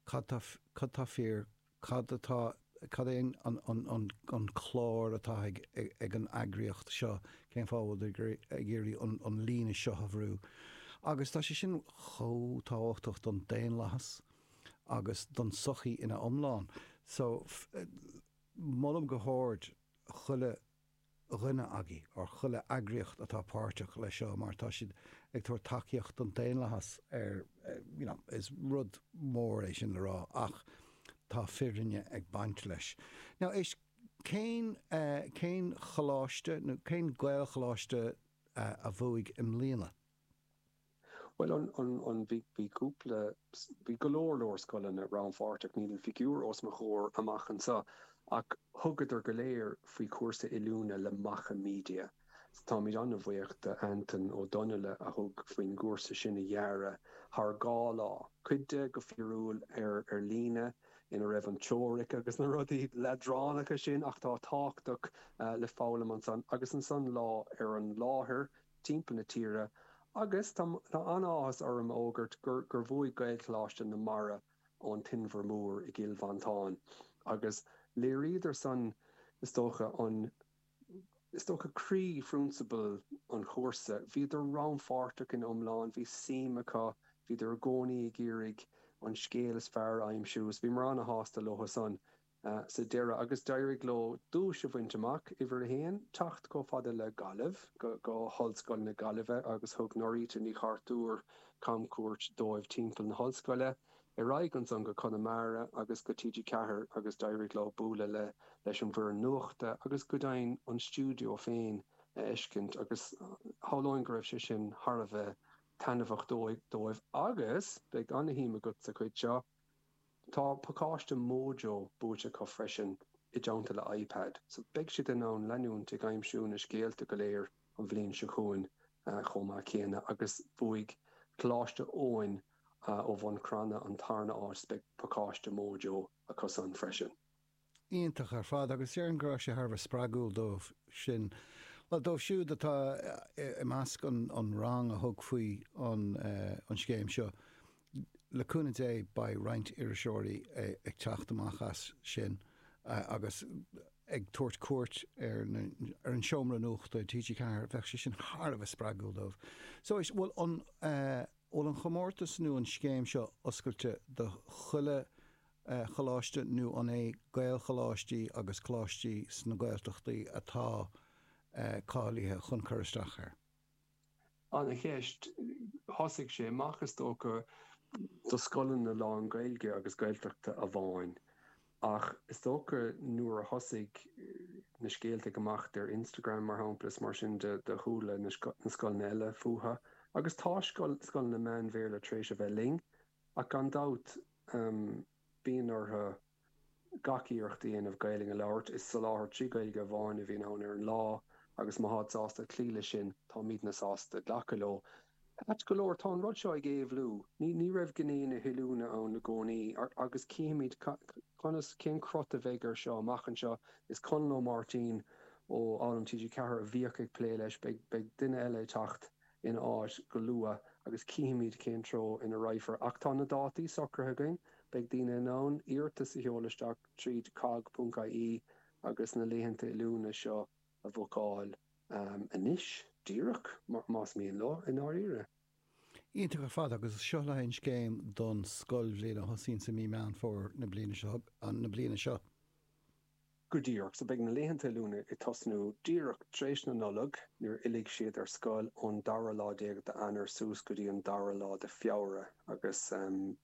cad tá fíor, cad, cad é an clár atá ag an eagraíocht seo, cén fáth a bhfuil siad ag iarraidh an líne seo a bhrú. Agus tá sé sin chomh tábhachtach don daonlathas agus don tsochaí ina iomlán. So, molaim go hard chuile. dhuine agaibh, ar chuile eagraíocht atá páirteach leis seo mar tá siad ag tabhairt tacaíocht don daonlathas ar you know is rud mór é sin le rá ach tá fírinne ag baint leis. Now, cén cén choláiste nó cén Gaelcholáiste a bhuaigh i mbliana? Bhuel, an, an, an, bhí, bhí cúpla, bhí go leor, leor scoileanna rannpháirteach, níl an figiúr os mo chomhair amach anseo, ach thugadar go léir faoi chúrsa oiliúna le Macha Media. So táimid an-bhuíoch de Antaine Ó Donnaile a thug faoin gcúrsa sin a dhearadh thar dhá lá, cuid de go fíorúil ar, ar líne, ina raibh an teoiric agus na rudaí leadránacha sin ach atá tábhachtach le foghlaim ansan, agus ansan lá ar an láthair. timpeall na tíre agus tá an-áthas orm a fhógairt gur bhuaigh Gaelcholáiste na Mara ón tInbhear Mór i gCill Mhantáin agus léiríodar san is dócha an is dócha croí phrionsabal an chúrsa, bhíodar rannpháirteach ina iomlán, bhí suim acu, bhíodar i gcónaí ag iarraidh an scéal is fearr a aimsiú is bhíomar an-sásta leo san. sa deireadh agus d'éirigh leo duais a bhaint amach, uimhir a haon, teacht chomh fada le Gaillimh, go hOllscoil na Gaillimhe agus thug Nóirita Ní Chartúir camchuairt dóibh timpeall na hollscoile, ar aghaidh ansan go Conamara agus go TG4 agus d'éirigh leo bualadh le leis an bhfoireann nuachta agus go deimhin an stiúideo féin a fheiscint agus shamhlóinn go raibh sé sin thar a bheith taitneamhach dóibh agus beidh ana-shuim agat sa chuid seo Tá pacáiste Mojo buaite acu freisin, i dteannta le iPad, so beidh siad in ann leanúint ag aimsiú na scéalta go léir an bhliain seo chugainn chomh maith céanna agus bhuaigh Coláiste Eoin ó Bhun Cranncha an tarna áit so beidh pacáiste Mojo acusan freisin. iontach ar fad agus déarfainn go raibh sé thar a bheith spreagúil dóibh sin, bhuel dóibh siúd atá i measc an rang a thug faoi an scéim seo. Le cúnamh Dé beidh roinnt iriseoirí ag teacht amach as sin agus ag tabhairt cuairt ar an seomra nuachta i TG4, bheadh sé sin thar a bheith spreagúil dóibh. So, bhfuil, bhfuil an chomórtas nó an scéim seo oscailte do chuile Choláiste nó an é Gaelcholáistí agus Coláistí sna Gaeltachtaí atá cáilithe chun cur isteach air? Ana-cheist. Thosaigh sé amach is dócha do scoileanna lán Gaeilge agus Gaeltachta amháin ach is dócha nuair a thosaigh na scéalta ag imeacht ar Instagram mar shampla is mar sin do chuala na scoileanna eile fúthu agus tá scoileanna meán Bhéarla tar éis a bheith linn. ach gan dabht bíonn orthu gach iarracht a dhéanamh Gaelainn a labhairt. Is soláthar trí Ghaeilge amháin a bhíonn ann ar an lá agus má táid sásta cloí leis sin, táimídne sásta glacadh leo. Ait go leor, tá an rud seo ag éabhlú. Ní raibh gné na hoiliúna ann i gcónaí agus cífimid conas, cén crot a bheidh air seo amach anseo. Is Conall Ó Máirtín ó Fhoghlaim TG4 a bhíodh ag plé leis, beidh duine eile ag teacht. ina áit go luath agus cífimid cén treo ina raghfar. Ach tá na dátaí socraithe againn. Beidh daoine in ann iarratas a sheoladh isteach tríd cogg.ie agus na laethanta oiliúna seo a bhookáil anois, díreach, más mian leo, i ndáiríre. Iontach ar fad agus seo le haghaidh an scéim don scoilbhliain a thosaíonn sa mí Meán Fómhair na bliana bliana seo. go díreach, so beidh na laethanta oiliúna ag tosnú díreach tar éis na Nollag nuair a fhillfidh siad ar scoil ón dara lá déag d'Eanáir suas go dtí an dara lá de Feabhra agus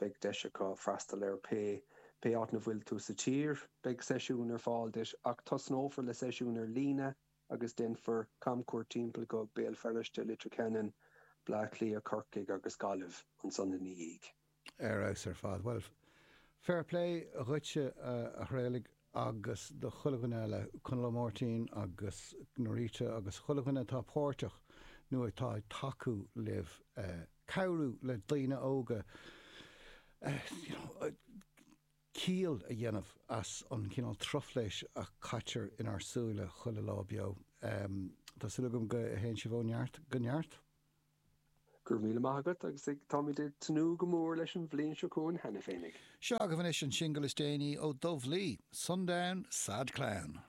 beidh deis acu freastal ar pé pé áit na bhfuil tú sa tír. Beidh seisiún ar fáil duit ach tosnófar le seisiún ar líne agus déanfar camchuairt timpeall go Béal Feirste, Leitir Ceanainn, Bleá Cliath, Corcaigh agus Gaillimh ansan ina dhiaidh. Ar fheabhas ar fad. Bhuel, fair play dhuitse a Thraolaigh agus do chuile dhuine eile, Conall Ó Máirtín agus Norita agus chuile dhuine atá páirteach nó atá ag tacú libh cabhrú le daoine óga ciall a dhéanamh as an gcineál truflaise a caitear inár súile chuile lá beo. Tá súil agam go théann sibh ó neart go neart. Go raibh míle maith agat agus táimid ag tnúth go mór leis an bhliain seo chugainn cheana féinig. Seo agaibh anois an singil is déanaí ó Dubh Lee, Sundown Sad Clown.